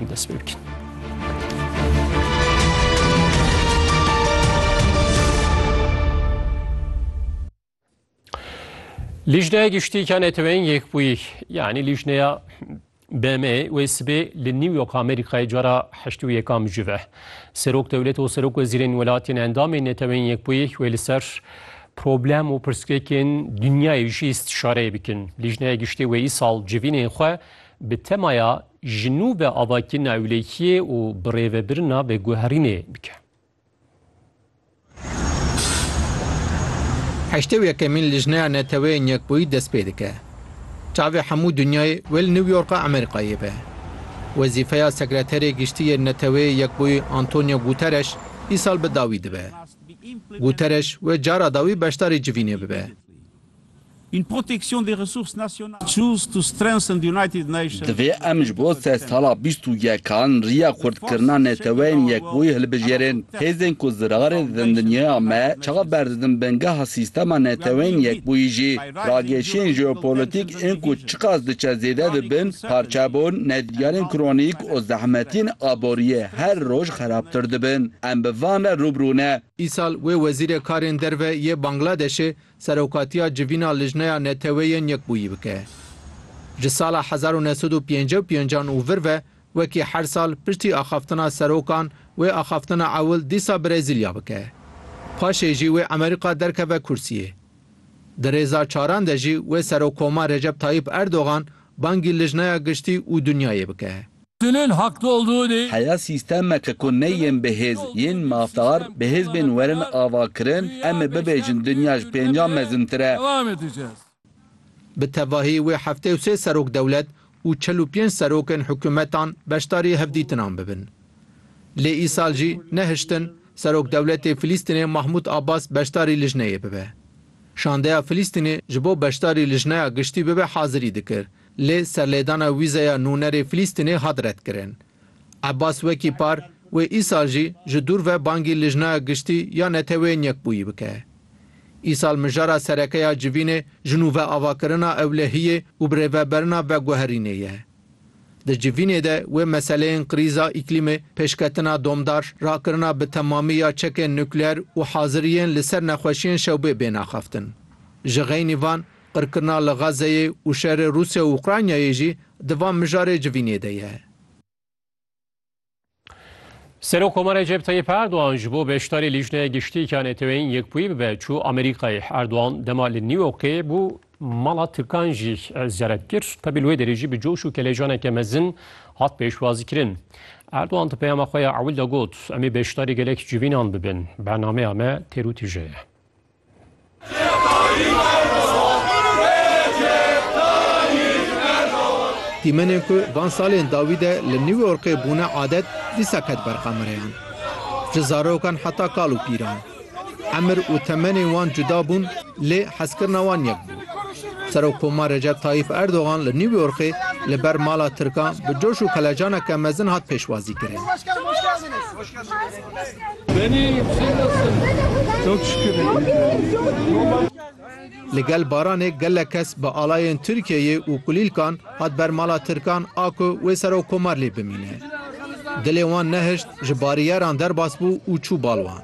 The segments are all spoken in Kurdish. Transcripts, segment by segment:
Em dest pê bikin. Lijneya Giştîka Neteweyên Yekbûyî yanî Lijneya BM wê sibê li New York Amerîkayê cara heştî û yekam ji ve. Serok dewlet û serok wezîrên welatên endamên Neteweyên Yekbûyî wê li ser problem û pirsgirêkên dinyayê jî îstîşareyê bikin. Lijneya Giştî wê îsal civînên xwe bi temaya Ji nû be avakirina ewlehiyê û birêvebirina veguherînê bike. Heştê û yekemîn Lijneya Neteweyên Yekbûyî dest pê dike. Çavê hemû dinyayê wê li New Yorka Amerîkayê be. Wezîfeya Sekreterê Giştî yê Neteweyê Yekbûyî Antonio Guterres îsal bi dawî dibe. Guterres wê cara dawî beşdarî civînê bibe. Divê em ji bo sed sala bîst û yekan riya xurtkirina Neteweyên Yekbûyî hilbijêrin. Hêzên ku zirarê didin dinyaya me, çav berdidin bingeha sîstema Neteweyên Yekbûyî jî. Ragêşiyên jeopolitîk ên ku çiqas diçe zêde dibin, parçebûn, nedîyarên kronîk û zehmetiyên aboriyê her roj xerabtir dibin. Em bi van re rûbirû ne. Îsal wê wezîrê karên derve yê Bangladeşê Serokatiya Civîna Lijneya Neteweyên Yekbûyî bike. Ji sala hezar û neh sed û pêncî û pêncî an û vir ve wekî her sal piştî axaftina serokan wê axaftina ewil dîsa Brezîlya bike. Paşê jî wê Amerîka derkeve kursiyê. Di rêza çaran de jî wê Serokkoma Recep Tayyîp Erdogan bangî Lijneya Giştî û Dinyayê bike. Tünün haklı olduğu de. Heya sîstemeke ku ne yên bihêz, yên mafdar, bihêz bên werin avakirin, em ê bibêjin dinya ji pêncan mezintir e. Bi tevahî wê heftê û sê serok dewlet û çil û pênc serokên hikûmetan beşdarî hevdîtinan bibin. Lê îsal jî nehiştin Serok dewletê Filîstînê Mahmûd Abbas beşdarî lijneyê bibe. Şandeya Filîstînê ji bo beşdarî lijneya giştî bibe hazirî dikir, Lê serlêdana wîzeya nûnerê Filîstînê hat redkirin. Ebbas wekî par wê îsal jî ji dûr ve bangî Lijnaya Giştî ya Neteweyên Yekbûyî bike. Îsal mijara sereke ya civînê ji nû ve avakirina ewlehiyê û birêveberina veguherînê ye. Di civînê de wê meseleyên krîza îklîmê, pêşketina domdar, rakirina bi temamî ya çekên nukleer û haziriyên li ser nexweşiyên şewbê bêne axaftin. Ji xeynî van Qirkirina li Xazzeyê û şerê Rûsya û Ukraynayê jî di van mijarê civînê de ye. Serokkomar Recep Tayyip Erdogan ji bo beşdarî Lîjneya Giştîk ya NATO'yê yên Yekbûyî bibe çû Amerîkayê. Erdogan dema li New Yorkê bû mala Tirkan jî ziyaret kir. Tevî li wê derê jî bi coş û kelejaneke mezin hat pêşwazîkirin. Erdogan di peyama xwe ya ewil de got, Em ê beşdarî gelek civînan bibin. Bernameya me têr û tije ye. Dîmenên ku van salên dawî de li New Yorkê bûne adet, dîsa ket ber qamireyan. Ji zarokan heta kal û pîran. Emir û temenên wan cuda bûn lê hezkirina wan yek bû. Serokkomar Recep Tayyîp Erdogan li New Yorkê li ber mala Tirkan bi coş û kelecaneke mezin hat pêşwazîkirin. Li gel baranê gelek kes bi alayên Tirkiyeyê û kulîlkan hat ber mala Tirkan a ku wê Serokkomarlê bimîne. Dilê wan nehişt, ji bariyeran derbas bû û çû bal wan.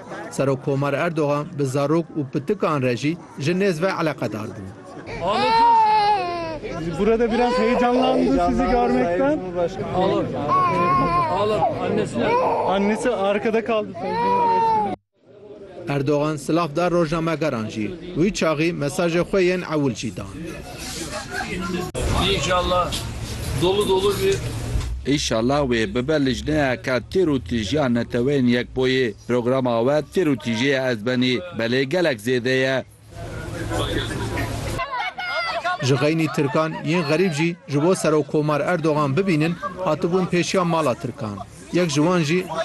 Serokkomar Erdogan bi zarok û pitikan re jî ji nêz ve eleqedar bû. Erdogan silav da rojnamegeran jî, wî çaxî mesajê xwe yên ewil jî dan. Înşallah dolu dolu bir. Înşallah wê bibe lijneyeke tîr û tîjiya Neteweyên Yekboyî. Programa we tîr û tîjiyê ez benî belê gelek zêde ye. Ji xeynî Tirkan yên xerîb jî ji bo Serokkomar Erdogan bibînin hatibûn pêşiya mala Tirkan. Yek ji wan jî